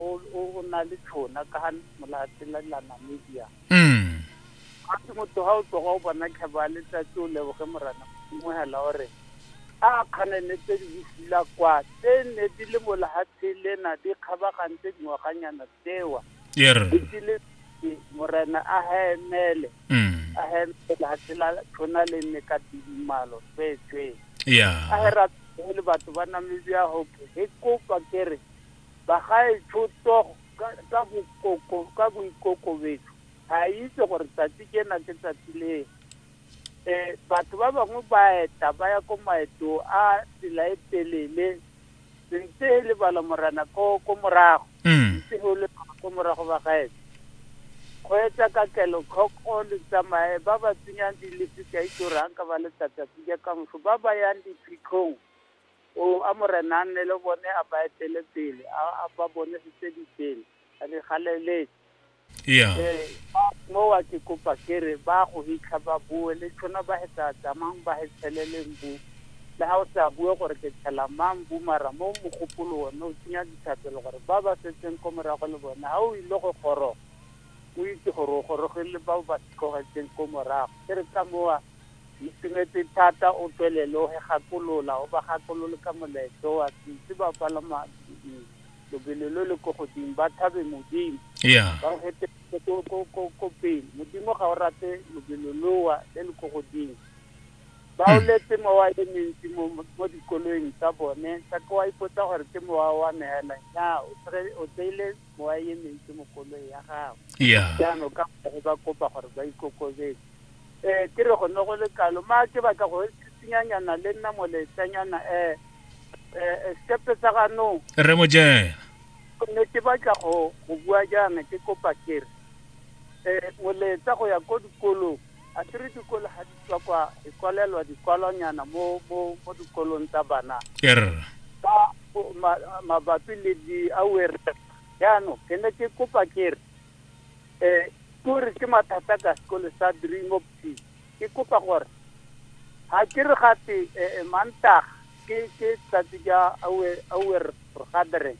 o o o na le tšhona ka ga molatshe la la namibia mm ga se motho ga o tloga o bona tlhabo ya letsatsi o leboge morana mongwela gore a kganene tse di bofula kwa tse ne di le mo lehatshe lena di kgabagantse dingwaganyana tsewa ye re di le e, morena a hemele mm a hemele lehatshe la tšhona le nne ka tidimalo tsweetswee a ya re ra- le batho ba namibia hope e kopa kere Bagaetsho Togo ka, ka bokoko, ka boikokobetso, a itse gore tsatsi kena ke tsatsi le. E, batho ba bangwe ba eta, ba ya ko maeto a tsela e telele, ntse e le balamorana ko, ko morago. Mm. Ntse go le ko morago ba gaetsho. Go etsa ka kelotlhoko le tsamaye, ba ba tsenyang dilifi ka itse gore ha nka ba letsatsi a tsenya kamoso, ba ba yang diphitlhong, O a Morena a nne le bone, a ba etele pele, a a ba bonesetse ditsela, a di galeletse. Iya. Ee, ba mowa ke kopa ke re, ba go hitlha ba boe, le tšhono ba he tsa tsamang ba he tsheleleng bu. Le ha o sa bue gore ke tshela mang bu mara mo mogopolo one o tsenya dithapelo gore ba ba setseng ko morago le bone ha o ile go goroga, o itse gore o gorogile le bao ba tlogetseng ko morago. Ke re ka mowa, Ke itumetse thata o tswelele o re gakolola, o ba gakolole ka molaetsa o a setse ba palama mm, lobelo lo le ko godimo ba thabe Modimo. ya Ba o reteletse ko ko ko ko pele. Modimo ga o rate lobelo loa le le ko godimo. Ba o letse mowa e mentsi mo mo- mo dikoloing tsa bone, sa ke wa ipotsa gore ke mowa wa me hela. Nnyaa, o tsere- o tseile mo a emetse mo koloi ya gago jaanong ka gore ba kopa gore ba ikokobetse um eh, ke re go ne go le kalo ma ke batla go tsitsinyanyana le nna moletsanyana um um sepe sa ganong re mojena gonne ke batla go bua jaana ke kopa kere um moletsa go ya ko dikolong A ke re dikolo ga di tswa kwa di kwalelwa dikwalwanyana mo mo mo dikolong tsa bana err ba bo- ma- mabapi le di-awareness jaanong ke ne ke kopa ke re um kore ke mathata ka sekole sa dream of peace ke kopa gore ga ke re gate um mantaga ke ke tsatsi ja awe awer gathering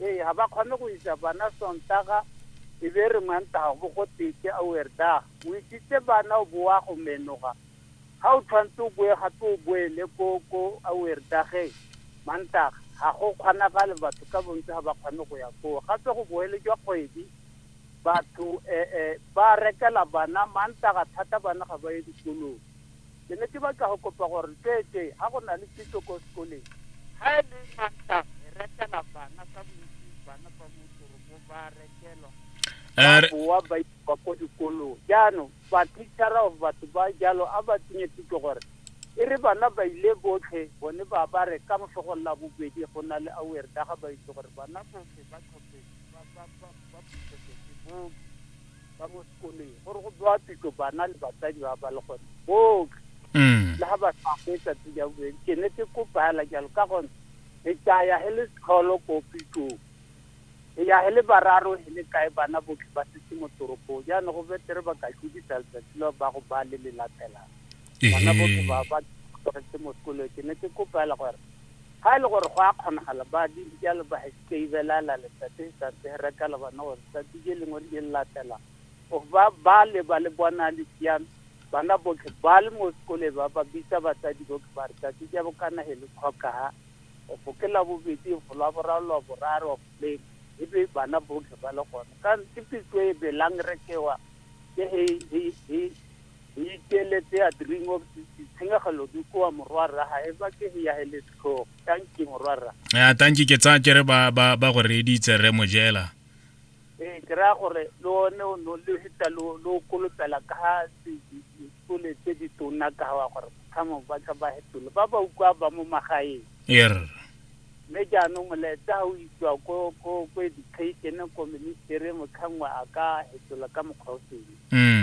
ee ga ba kgone go isa bana sontaga e be re mantaga bo go teke a werdaga o isitse bana o boa go menoga ga o tshwanetse o boe gape o boele ko ko a werdageng mantaga ga go kgonagale batho ka bontsi ga ba kgone go ya koo gape go boele jwa kgwedi batho um ba rekela bana mantaga thata bana ga ba ye dikolong Ke ne ke batla go kopa gore tsweetswe ha go na le kitso ko sekoleng. Ha e le mantla re rekela bana ka bontsi bana ba mo toropong ba rekelwa ba eh, boa ba ipa ko dikolong jaanong bathitšhara of batho ba jalo a ba tsenye thuto gore e re bana ba ile botlhe bone ba ba re ka mosegong la bobedi go na le awer ka ga ba itse gore bana botlhe ba tlhophetse ba ba ba ba phuthetse ke booki ba mo sekoleng gore go bewa pitlo bana le batsadi ba ba le gone botlhe mm. le ga ba sa fetsa tse di a bobedi ke ne ke kopela jalo ka gone e tsaya he le setlholo ko pitlong e ya he le bararo he le kae bana botlhe ba setse mo toropong jaanong go betere ba ka tlodisa letsatsi la ba go ba le le latelang bana botlhe ba ba tlogetse mo sekolong ke ne ke kopela gore ga e le gore go a kgonagala ba di jalo ba Thibelala letsatsi letsatsi ge reka le bona gore tsatsi je lengwe le je le latela gore ba bale ba le bona le siame bana botlhe ba le mo sekole ba ba bitsa batsadi botlhe ba re tsatsi ja bokana he le tlhokaga go ke la bobedi go la boraro la boraro le e be bana botlhe ba le gone ka ke pitso e belang rekewa ke he he he he iteletse a dream of tshenyegelo di koa morwa rra ga e ba ke he ya he le setlhogo tanki morwarra ya tanki ke tsa kere ba ba ba go reditse re mojela eh ke ra gore le one o no le hita lo lo kolotela ka dikole tse di tona ka wa gore thamo ba tla ba hetole ba ba ukwa ba mo magaeng yer mme jaanong molaetsa o itswa ko ko ko education ko ministere motlhangwa a ka hetola ka mokgwa o sele mm